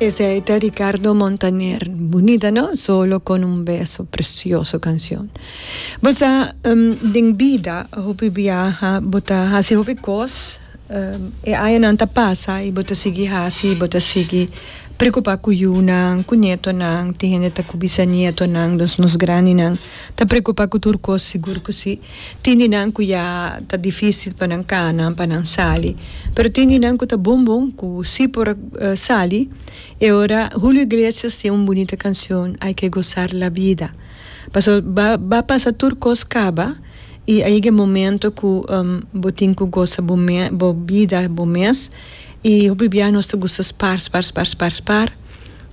Esey ta Ricardo Montaner. Bunita no? Solo con un beso. Precioso cancion. Bo sa, den bida hopi biaha bo ta haci hopi cos, e añanan ta pasa y bo ta sigui haci, bo ta sigui preocupa cu yunan, cu nietonan, tin hende ta cu bisa nietonan, nos graninan ta preocupa cu tur cos, sigur cu si. Tin di nan ku ya ta difisil pa nan kana, pa nan sali. Pero tin di nan ku ta bon bon, ku si por sali. E ora Julio Iglesias tin un bunita kanshon, Hay que gozar la vida. Pasobra ba ba pasa tur kos kaba i a yega e momento ku bo tin ku goza bo bo bida bo mes i hopi bia nos ta gusta spar, spar, spar, spar, spar.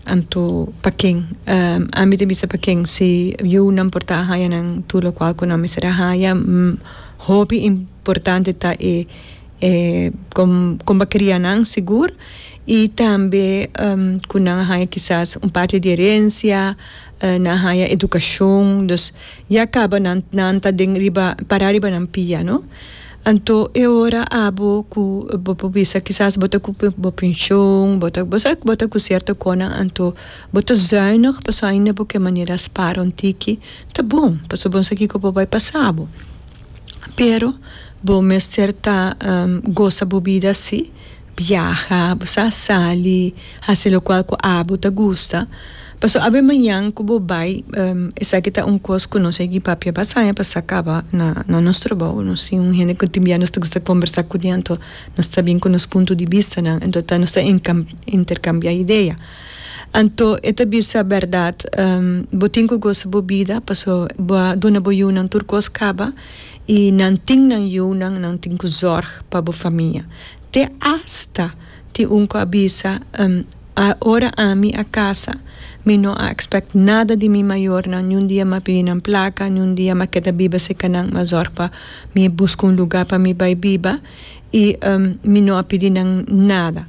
Anto pa ken? Ami ta bisa pa ken si yunan por ta a haña nan tur lokual ku nan mester a haña. Hopi importante ta e e kon kon bo a kria nan sigur i tambe ku nan a haña kisas un parti di herensia, nan a haña edukashon, dus ya kaba nan nan ta den riba pará riba nan pia, no? Anto e ora abo ku bo por bisa kisas bo ta ku bo penshon, bo ta bo sa ku bo ta ku sierto konan anto bo ta zùinig pasobra ainda bo ke manera spara un tiki ta bon pasobra bo no sa kiko por bai pasa bo pero bo mester ta gosa bo bida si. Biaha, bo sa sali, hasi lokual ku abo ta gusta. Paso awe mañan ku bo bai, esaki ta un kos ku nos yagi papia basaña pa sa kaba na nos trabou. Nos tin un hende ku tin bia nos ta gusta kombersá ku di anto nos ta bin ku nos punto di bistanan. Anto ta nos ta interkambiá idea. Anto e ta bisa bèrdat, bo tin ku gosa bo bida paso bo a duna bo yunan tur kos kaba. I nan tin nan yunan, nan tin ku zòrg pa bo famia. Te asta tin un ku a bisa, Hm, a ora ami a kasa, mi no a ekspèkt nada di mi mayornan, niun dia m'a pidi nan plaka, niun dia m'a keda biba serka nan, m'a zòrg pa mi, buska un lugá pa mi bai biba i mi no a pidi nan nada.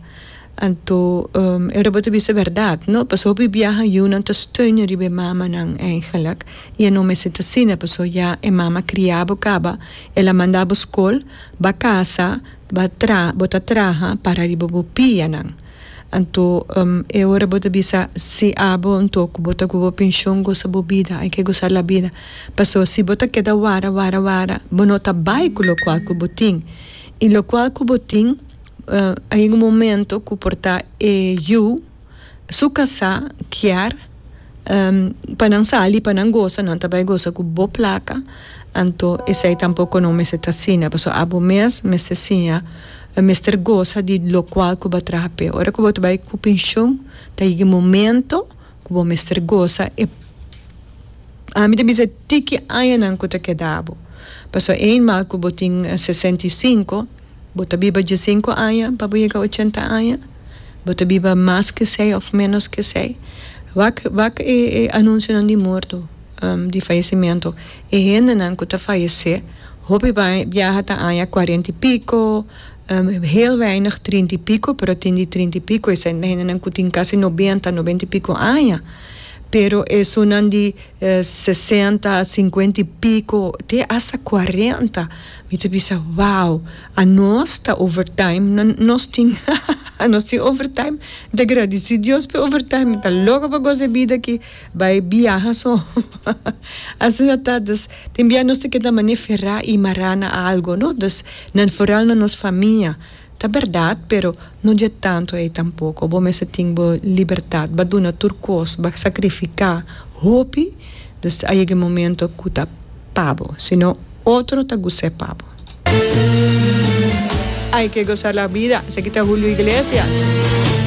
Anto e robot a bisa berdad, no? Pasobra hopi biaha yunan ta steunen riba e mamanan eigenlijk i e no mester ta asina pasobra ya e mama a kria bo kaba, el a manda bo skol, ba kasa, ba tra bo ta traha para riba bo pianan. Anto e ora bo ta bisa si abo anto ku bo ta gua bo penshon gosa bo bida, hay ke gosa la bida, pasobra si bo ta keda wara wara wara bo no ta bai ku lokual ku bo tin i lokual ku bo tin, a yega un momento cu por ta e yu su casa kier pa nan sali pa nan gosa nan ta bay gosa cu bo placa anto esey tampoco no mester ta asina pasobra abo mes mester siña mester gosa di locual cu bo a traha p'e ora cu bo ta bay cu pension ta yega e momento cu bo mester gosa e ami ta bisa tiki añanan cu ta keda bo pasobra ey mal cu bo tin sesenta y cinco Bo ta biba diesinku aña pa bo yega ochenta aña? Bo ta biba mas ke esei òf ménos ke esei? Wak wak e e anunsionan di morto, di fayesimentu. E hendenan ku ta fayesé, hopi biaha ta aña kuarenta i piko, hel weineg trinta i piko, pero tin di trinta i piko esei ta hendenan ku tin kasi nobenta, nobenta i piko aña. Pero esunnan di sesenta, sinkuenta i piko te asta kuarenta Mi ta bisa, Wow! Anos ta overtime, no, nos tin, ha, ha, ha, nos tin overtime. Mi ta gradisí Dios p'e overtime, mi ta loko pa goza e bida aki, bai biaha so, ha, ha. Asina ta, dus, tin bia nos ta keda mané ferá i mará na algu, no? Dus, na, foral na nos famia. Ta berdad, pero no dje tantu ei tampoco. Bo mester tin bo libertad ba duna tur cos, ba sacrifica hopi, dus a yega e momento cu ta pa bo, si no otro ta gus'é pa bo. Hay que gozar la vida, esaki ta Julio Iglesias.